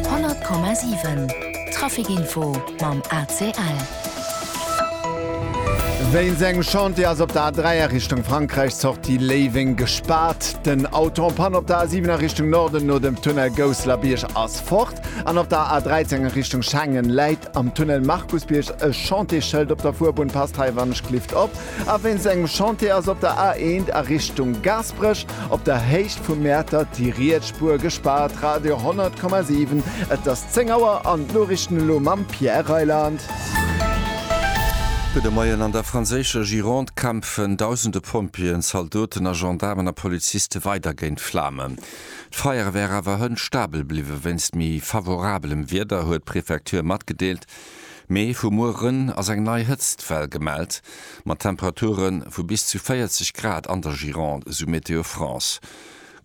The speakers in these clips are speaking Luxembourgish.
100,7 Trafic Info mam ACL. Wéint engem Chantier ass op der A3 a Richtung Frankräich d'Sortie Léiweng gespaart. Den Auto en Panne op der A7 a Richtung Norden no dem Tunnel Gousselerbiërg ass fort. An op der A13 a Richtung Schengen läit am Tunnel Markusbierg e Chantier-Schëld op der Fuerbunn, passt hei wann ech klift op. A wéinst engem Chantier ass op der A1 a Richtung Gaasperech op der Héicht vu Mäertert déi riets Spuer gespaart. Radio 100,7 Et ass 10 Auer an d'Noriichten elo mam Pierre Reyland. Gudde Moien, An der franséischer Gironde kämpfen dausende Pompjeeën, Zaldoten a Gendaarmen a Poliziste weider géint d'Flamen. D'Feier wär awer hënt stabel bliwwen. Wéinst méi favorabelem Wieder huet d'Prefecture matgedeelt, Mee vu mueren ass eng nei Hëtztwell gemellt, mat Temperature vu bis zu 40 Grad an der Gironde, esou Météo France.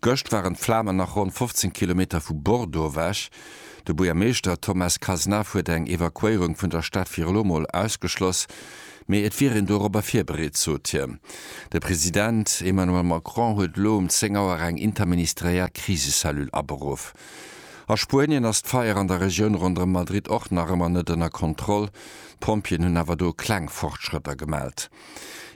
Gëscht waren d'Flamen nach ronn 15 Kilometer vu Bordeaux ewech. De Buergermeeschter Thomas Cazenave huet eng Evakuéierung vun der Stad fir elo mol ausgeschloss, mee et wier een dorobber virbereet, sot hien. De President Emmanuel Macron huet elo um 10 Auer eng interministeriell Krisecellule aberuff. A Spuenien ass d'Feier an der Regioun ronderëm Madrid och nach ëmmer net ënner Kontroll. D'Pompjeeën hunn awer do kleng Fortschrëtter gemellt.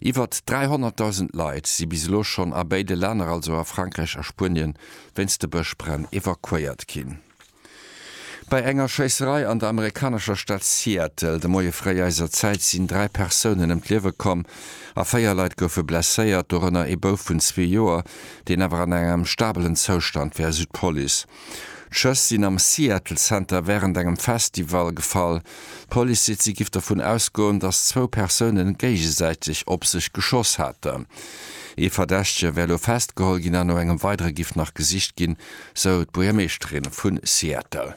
Iwwert 300.000 Leit si bis elo schonn a béide Länner, also a Frankräich a Spuenien, wéinst de Bëschbränn evakuéiert ginn. Bei enger Schéisserei an der amerikanescher Stad Seattle de Moie fréi eiser Zäit sinn dräi Persounen ëm d'Liewe komm a véier Leit goufe blesséiert, dorënner ee Bouf vun zwee Joer, deen awer an engem stabelen Zoustand wär, esou d'Police. D'Schëss sinn am Seattle Center wärend engem Festival gefall. D'Police seet, si giff dovun ausgoen, datt zwou Persoune géigesäiteg op sech geschoss haten. Ee Verdächtege wär elo festgeholl ginn an no engem weidere giff nach gesicht ginn, sou d'Buergermeeschterin vu Seattle.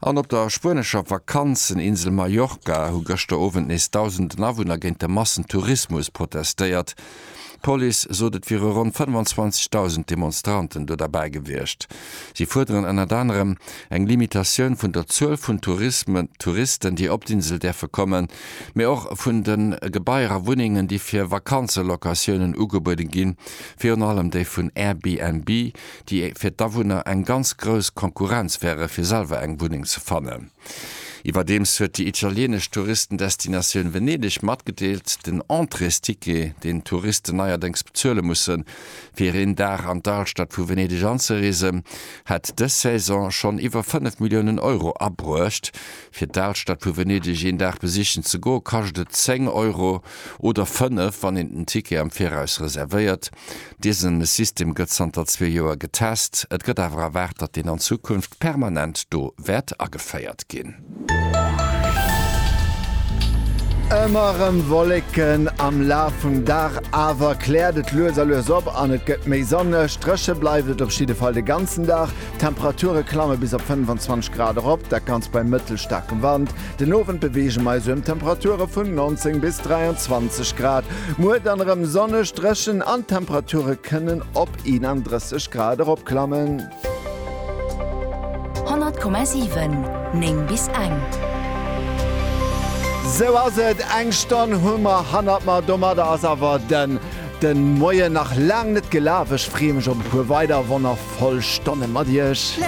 An op der spuenescher Vakanzeninsel Mallorca hu gëschter Owend nees dausenden Awunner géint de Massentourismus protestéiert. D'Police sot et wiere ronn 25.000 Demonstranten do derbäi gewiescht. Si fuerderen ënnert anerem eng Limitatioun vun der Zuel vun Touristen, déi op d'Insel däerfe kommen, mee och vun de Gebaier a Wunnengen, déi fir Vakanzelocatiounen ugebuede ginn, virun allem déi vun Airbnb. déi fir d'Awunner eng ganz grouss Konkurrenz wäre fir selwer eng Wunneng ze fannen. Iwwerdeems huet déi italieenesch Touristendestinatioun Venedeg matgedeelt, den Entréesticket, deen d'Touristen neierdéngs bezuele mussen, fir een Dag an d'Alstad vu Venedeg anzereesen, hätt dës Saison schonn iwwer 5 Milliounen Euro abruecht. Fir d'Alstad vu Venedeg een Dag besichen ze goe kascht et 10 Euro oder 5, wann een den Ticket am Viraus reservéiert. Dëse System gëtt zanter zwee Joer getest, et gëtt awer erwaart, datt en an Zukunft permanent do wäert ageféiert ginn. Ëmmer rem Wolleken am Laf vum Dag, awer kläert et lues a lues op an et gëtt méi sonneg. Dréche bleift et op jidde Fall de ganzen Dag, d'Temperature klamme bis op 25 Grad erop, dat ganzt bei mëttelstaarkem Wand. Den Owend beweege mer eis ëm Temperature vun 19 bis 23 Grad. Muer dann erëm sonneg, dréchen an d'Temperature kënnen op 31 Grad eropklammen. 100,7, 9 bis eng. Sou ass et, eng Stonn hu mer hannert mer. Domadder ass awer den de Moien nach laang net gelaf. Ech freeë mech op e puer weider wonnervoll Stonne mat iech.